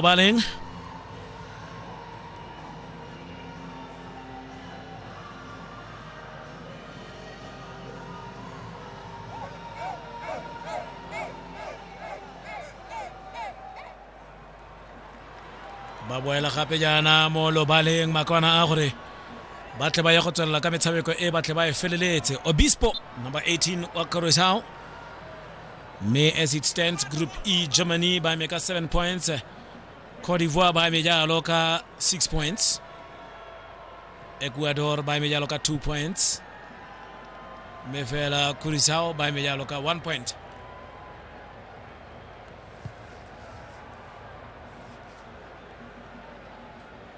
Valen. ba boela gape jaana mo lobaleng makwana a gore ba tle ba ye go tswelela ka metshameko e ba tle ba e feleletse obispo number 18 wa corosao mme as it stands group e germany ba eme ka 7 points cote d'ivoire ba eme jalo ka 6 points ecuador ba eme jalo ka 2 points mme fela curacao ba eme jalo ka 1 point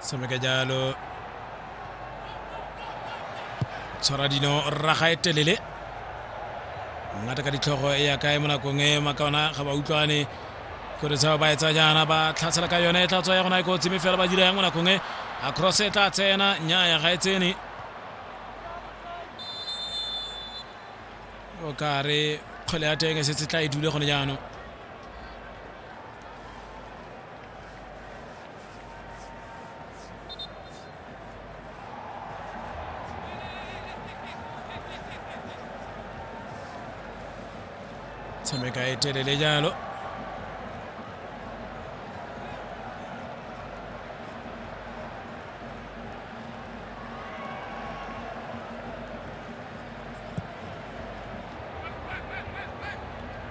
Sami Kajalo tshwara dino rraga e telele ngata ka ditlhogo e ya kae mo nakong e makaona ga ba utlwane gore tseo ba etsa jaana ba tlhatsela ka yone e tla tswa ya gona e kotsi mme fela ba dira yang mo nakong e a cross e tla tsena nnyaya ga e tsene o ka re kgwele ya teng e setse tla e dule gone jaanong tshameka e telele jalo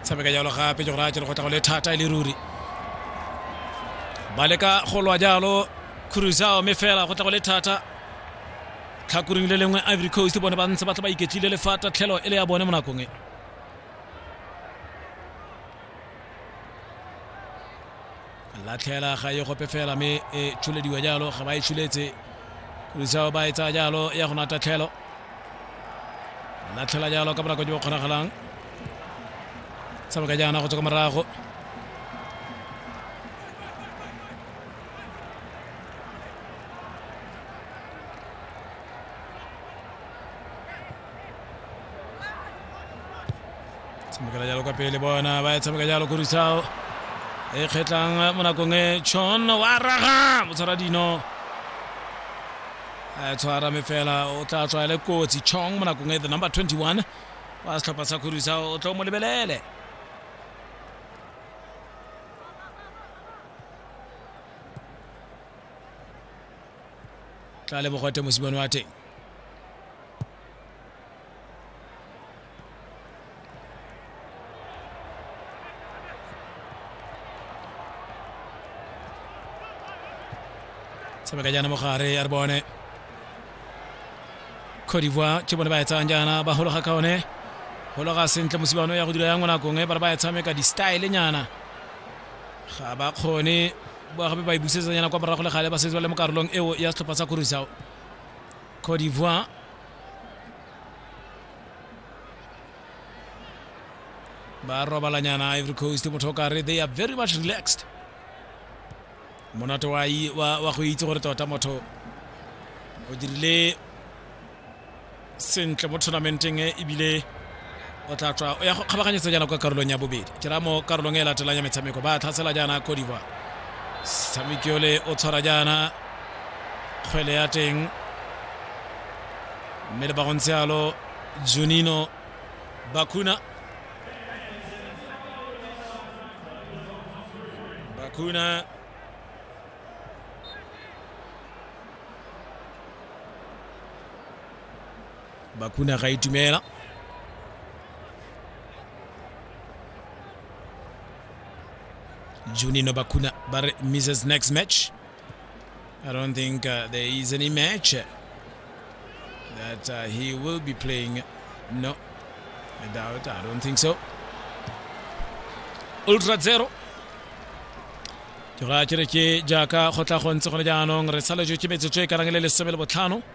tshameka jalo gape jo raya jalo go tla go le thata e le ruri ba leka go lwa jalo crusao mme fela go tla go le thata tlhakoring le lengwe ivory coast bone ba ntse ba tla ba iketlile le fa tatlhelo e le ya bone mo nakong e latlhela ga e gope fela mme e tshulediwa jalo ga ba e tshuletse kurisao ba e tsaya jalo ya go na tatlhelo latlhela jalo ka bonako jo bo kgonagalang tshameka jaana go tswa ka morago tshamekela jalo kwa pele bona ba tshameka jalo ko risao e kgetlang mo nakong e chon wa raga motshwara dino a tshwara me fela o tla tswa le kotsi chong mo nakong e the number 21 wa setlhopha sa khorisa o tlo mo lebelele tla leboga te mosimane wa teng tshameka jaana mogare ya re bone cote d'ivoire ke bone ba e tsayang jaana ba hologa ka one hologa sentle mosibano ya go dira ya ngwanakong e ba re ba e tshameka di-style nyana ga ba kgone ba gape ba e busetsanyana kwa morago le gale ba setse ba le mo karolong eo ya setlhopha sa kurusao cote d'ivoire ba robalanyana ivory coast motho o kare they are very much relaxed monate wa, i- wa, wa go itse gore tota motho o dirile sentle mo tournamenteng e ebile o tla tswa o ya go kgabaganyetsa jaana kwa karolong ya bobedi ke ra mo karolong e latelang ya metshameko ba tlhasela jaana cote divoire tshameki ole o tshwara jaana kgwele ya teng mme le ba go ntse yalo junino bakuna bakuna bakuna ga itumela junino bakuna ba re mrs next match i don't think uh, there is any match that uh, he will be playing no i doubt i don't think so ultra zero ke gore a kere ke jaaka go tla go ntse gone jaanong re saletswe ke metsotso e karang le lesome le botlhano